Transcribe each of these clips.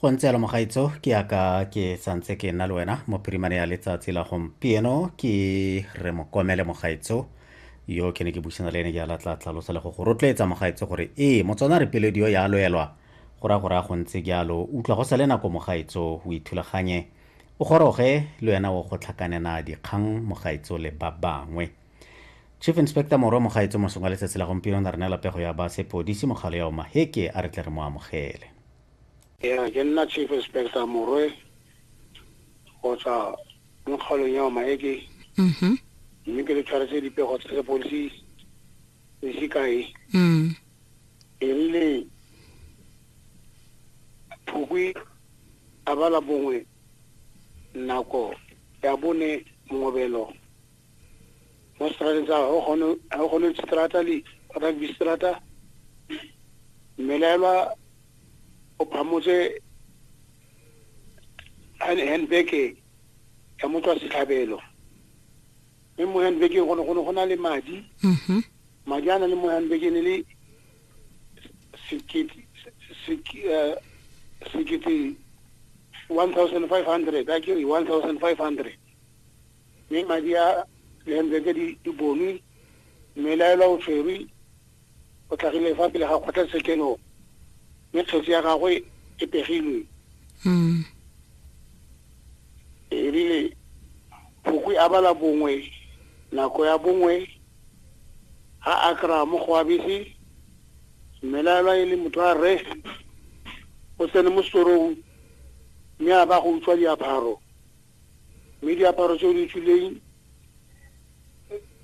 go ntse alo mogaitso ke yaka ke santse ke nna le wena mo primary ya letsatsi la gompieno ke re mokomele mogaitso yo ke ne ke busana le ene ke ala tla tlhalosa le go go rotloetsa mogaitso gore ee motswana re pelediyo ya loelwa go ra gore a go ntse jalo utlwa go sa le nako mogaitso o ithulaganye o goroge le wena o go tlhakanena dikgang mogaitso le ba bangwe chief inspector morwa mogaetso mosong wa letsatsi la gompieno na re neela pego ya ba sepodisi mogalo ya omaheke a re tle re mo amogele ya ke nna chief inspector morwe go tswa mo kgaolong ya omaheke mm-hmm. mme ke le tshwaretse dipego tsa sepodisi se se kae mm. e rile phukwi a bala bongwe nako ya bone mongobelo mo strateng sa gone strata le rugby strata mmelaelwa o phamotse handbag ya motswa setlhabelo mme mo handbageng gone gone go na le madi mm-hmm. madi a na le mo handbageng e le eh, sekete one thousand five hundred a kere one thousand five hundred mme madi a dihentle tse di bonwe mme laelwa o tshwerwe o tlhagile fa pele ga kgotlatshekelo mme kgetsi ya gagwe e pegilwe mm. erile phokwi a bala bongwe nako ya bongwe ga a kry-a mo go abese mme laelwa e le motho a re o tsene mo setorong mme a ba go utswa diaparo mme diaparo tse o di tswileng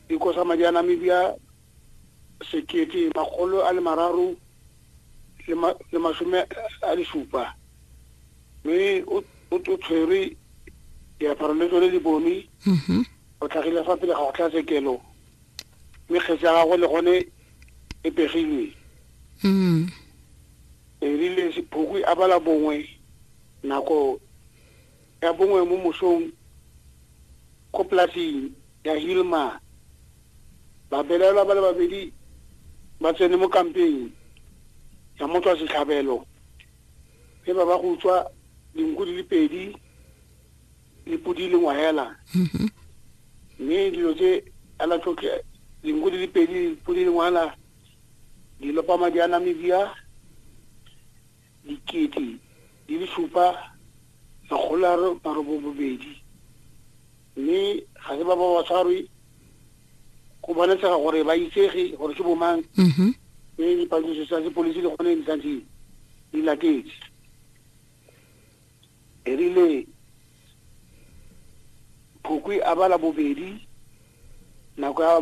di kosa madi a namibia sekete makgolo a le mararo le masome a le supa mme o tshwere diaparo le tsone di bone mm-hmm. o tlhagile fa pele ga go tlhatsekelo mme kgetsi ya gago le gone e pegilwe mm-hmm. erile sephokwi a bala bongwe nako ya bongwe mo mosong ko polasing ya Hilma babelaelwa ba le babedi ba tsene mo kampeng ya motswa setlhabelo mme ba ba go utswa dinku di le pedi le podi le ngwahela mm-hmm. mme dilo tse ala tlotle dinku di le pedi podi le ngwahela di lopa madi a namibia dikete di le supa makgolo a marobobobedi mme ga se ba ba ba tshwarwe go bonatshega gore ba itsege gore ke bomang mm-hmm. mme dipatlisiso tsa sepodisi le gone di santse di latetse erile phokwi a bala bobedi nako ya